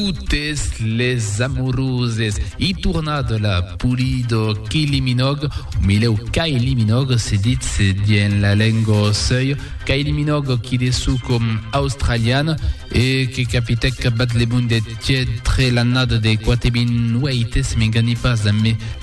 totes les amoroses i tornat la Pulido Kiliminòg, o milèu Kailiminòg se ditz dien la lenga sèu, Kailiminòg qui de su com australian e que capitèc bat le monde tièd tre l'annada de 4008 se m'enganhi pas,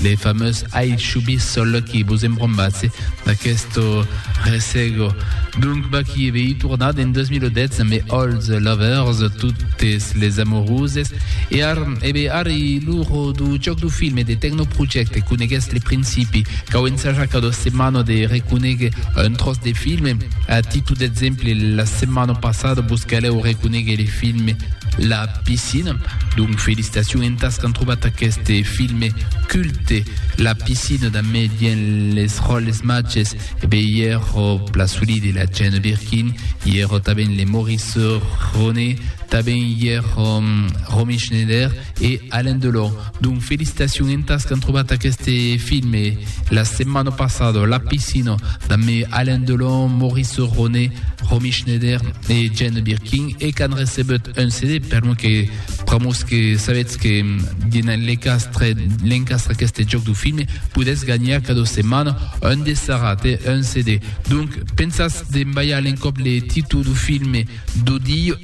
Le fameux Ai Shubi sol que vos embrombatse d'aquesto ressego. Donc Backy vei tornat en 2010 amb Old Lovers, Totes les Amoureuses, e ar, ebe ar i l'uro du joc du film e de Techno Project, conegues le principi, cau ensajar cada setmana de reconegue un tros de film, a titu d'exemple la setmana passada vos caleu reconegue le film La Piscina, donc felicitacion entas qu'an trobat aqueste filme culte La Piscina damé dien les ròles matges e be i ero Plasoli de la Jane Birkin i ero taben le Maurice Ronet taben i ero Romy Schneider e Alain Delon. Donc felicitacion entas qu'an trobat aqueste filme la setmana passada, La Piscina, damb Alain Delon, Maurice Ronet, Romy Schneider e Jane Birkin e qu'an recebut un CD, per lo que pr'amors que sabetz que dinant l'encastre l'encastre aqueste jòc du filme podètz ganhar cada setmana un dessarat e un CD. Donc pensatz d'embalhar l'encòp le títol du filme du dia.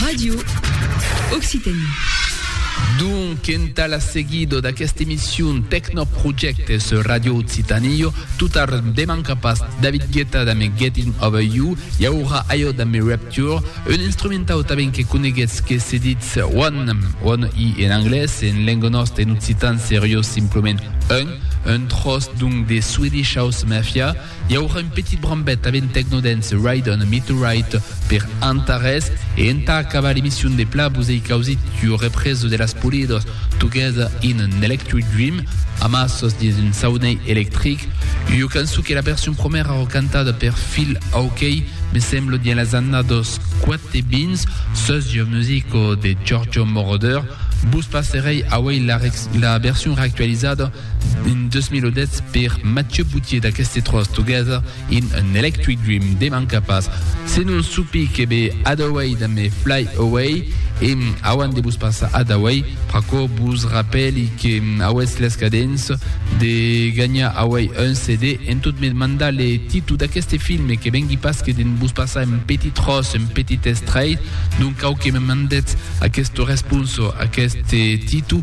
Radio Occitanie. Donc, entà la seguido d'aquesta emission Tecnoprojectes sur Radio Occitanie, totard deman capas, David Guetta damb Getting Over You, i aurà ajo damb Rapture, un instrumentau tanben que coneguetz que se ditz One, One i en anglés, e en lenga nòsta, en occitan, seriós, simplement Un, un tròç donc de Swedish House Mafia, I aurà un petit brambet avent Tecnodance, Ride on a Meteorite per Antares e entà acabar l'emission de pla vos ei causit ua represa de las Polidos Together in an Electric Dream amb assos dins un saunei electric, ua cançon que la version promèra ro cantada per Phil Oakey, me sembla dins las annados 420, sus ua musica de Giorgio Moroder. Vos passerei auei la version reactualizada. En 2010 per Mathieu Boutier d'aqueste tròç Together in an Electric Dream de manca pas se non supi que be Adaway damb Fly Away e auant de vos passar Adaway pr'aquò vos rapèli que auetz l'escadens de ganhar away un CD en tot me mandar le titu d'aqueste filme que vengui pas que de'n vos passar un petit tròç un petit estrait donc cau que me mandetz aquesta responsa a aqueste titu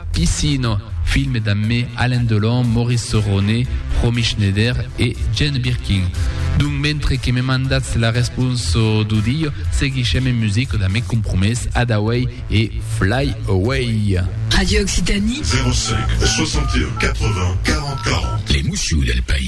Piscina, film d'ammé Alain Delon, Maurice Cerrone, Romy Schneider e Jane Birkin. Donc mentre que me mandatz la responsa do dia, seguishem en musica d'ammé Compromès, Adaway e Fly Away. Radio Occitanie. 05 61 80 40 40. Les moussions del país.